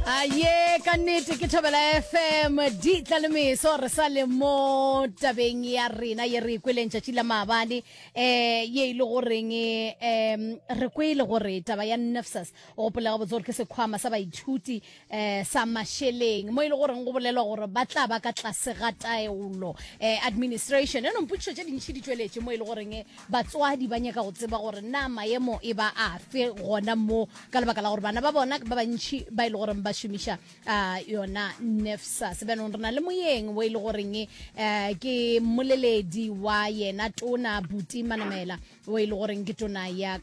a ye ka nnete ke thobela fm di tla le meso re sa le mo tabeng ya rena ye re ikweleng tšatši la maabane um ye e le goreng um re kwele gore taba ya nafsas o gopolega botse gore ke sekgwama sa baithuti um sa mašeleng mo e le goreng go bolelwa gore ba tla ba ka tlase ga taolo um administration e nompotšišo tše dintšhi di tšweletše mo e le goreng Batswadi ba nyaka go tseba gore na maemo e ba afe gona mo ka lebaka la gore bana ba bona ba bantšhi ba e le goreng ba šomiša uh, yona nefsa sebenong re na le moyeng o e le goreng uh, ke mmoleledi wa yena tona buti manamela o e le goreng ke tona ya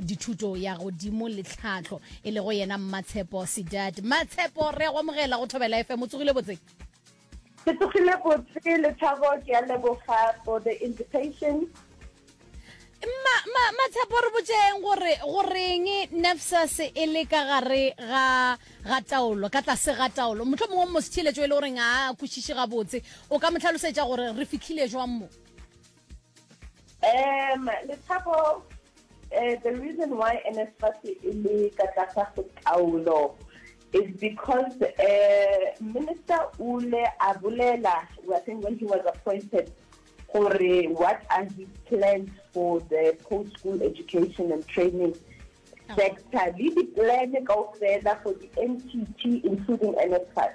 dithuto ya godimo le tlhatlho e lego yena mmatshepo sedat mmatshepo re go amogela go thobela fm o tsogile botseng Ke tsogile botse le thabo ke a leboga for the invitation. Ma ma ma tshepo re botseng gore goreng nafsas e le ka gare ga ga taolo ka tlase ga taolo motlho mongwe mo setsheletso e le goreng a kwešiše gabotse o ka mo tlhalosetša gore re fitlhile jwang mo Um Lethabo, um the reason why NSFAS e le ka tlasa go taolo is because um minister o ile a bolela, I think when he was appointed, gore what are his plans for the post school education and training sector le di-plan kaofela for di-ntt including NSFAS.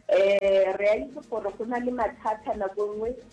Um re a itse gore go na le mathata nako nngwe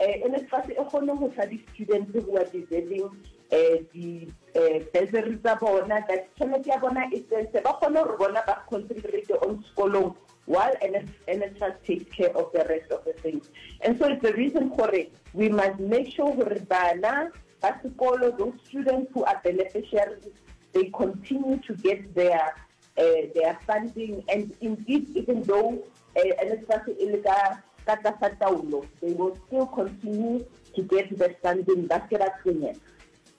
Eh, NSFAS e kgone go fa di-students who are deserving eh, di-bursary eh, tsa bona that tšhelete ya bona e tsentse ba kgone gore bona ba concentrate on sekolong while NSFAS takes care of the rest of the things. And so it's the reason for it. We must make sure that Bana, Basikolo, those students who are beneficiaries, they continue to get their they are funding and indeed even though NSFAS e le ka ka tlasa taolo they will still continue to get that funding ba se ba tshwenyega.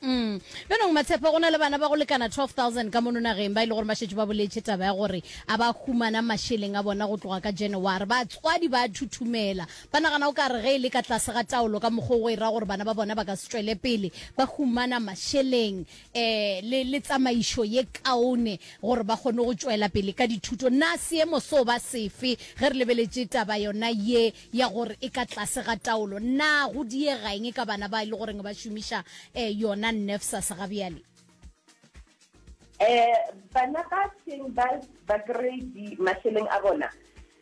Mm. Bjanong Matshepo go na le bana ba go lekana 12,000 ka mono nageng ba e le gore ba šetše ba boletše taba ya gore a ba humana mašeleng a bona go tloga ka January. Batswadi ba a thuthumela. Ba nagana o ka re ge e le ka tlase ga taolo ka mokgwa o go e ra gore bana ba bona ba ka se tšwele pele ba humana mašeleng. eh le le tsamaišo ye kaone gore ba kgone go tšwela pele ka dithuto na seemo so ba sefe ge re lebeletše taba yona ye ya gore e ka tlase ga taolo na go diegaeng ka bana ba e le goreng ba šomiša eh yona nefsas ga bjale eh bana ba seng ba ba grade mašeleng a bona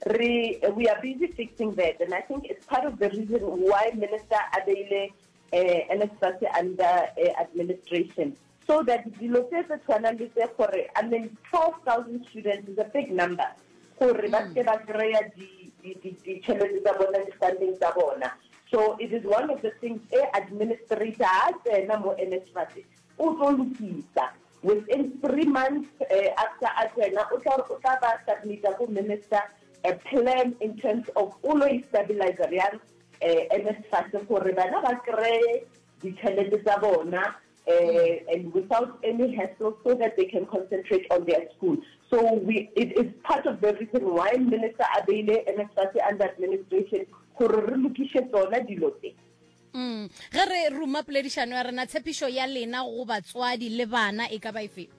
re we are busy fixing that and i think it's part of the reason why minister a beile eh, NSFAS under eh, administration so that dilo tse tse tshwanang le tse gore i mean 12000 students is a big number gore ba mm. seke ba kry-a ditšhelete tsa bona di-funding tsa bona so it is one of the things e administrator a tsena mo NSFAS o tlo lokisa within three months eh, after a tsena o tla ba submita ko minister a plan in terms of o lo e stabilizer yang NSFAS gore bana ba kreye ditšhelete tsa bona and without any hassle so that they can concentrate on their school. So we, it is part of the reason why minister a beile NSFAS under administration gore re lokiše tsona dilo tse. Mm. Ge re ruma poledišano ya rena, tshepišo ya lena go batswadi le bana e ka ba efe?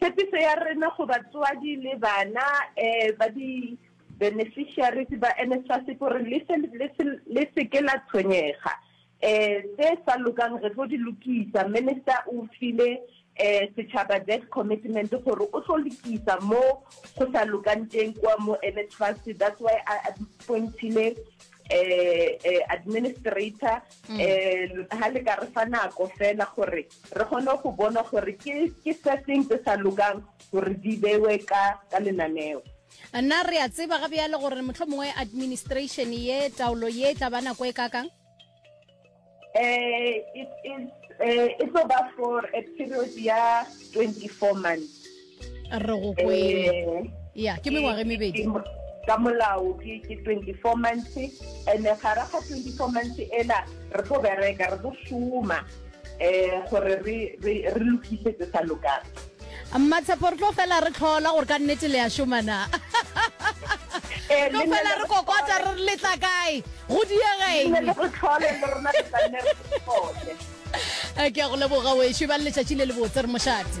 Tshepiso ya rena go batswadi le bana um ba di-beneficiaries ba NSFAS ke gore le se le se le se ke la tshwenyega. Um tse sa lokang re tlo di lokisa. Minister o file um setšhaba that commitment gore o tlo lokisa mo go sa lokang teng kwa mo NSFAS. That's why a appoint-ile um administrator um ha le ka re fa nako fela gore Re kgone go bona gore ke, ke se seng se sa lokang gore di bewe ka, ka lenaneo. Na re a tseba ga bjale gore mohlomongwe administration ye, taolo ye, e tla ba nako e kakang? Eh, it is, eh, e tlo ba for a period ya twenty-four months. re go kwele eh. ya ke mengwaga e mebedi ka molao ke ke 24 months and gara ga 24 months ela re tlo bereka re tlo šoma um gore re lokise tse sa lokang mmatshepo re tlo fela re tlhola gore ka nnete le ya šomana eh, tlo fela re kokota re letla kae go diegeng eh, ke ya go leboga wešo ba le letšatši le le botse re mošate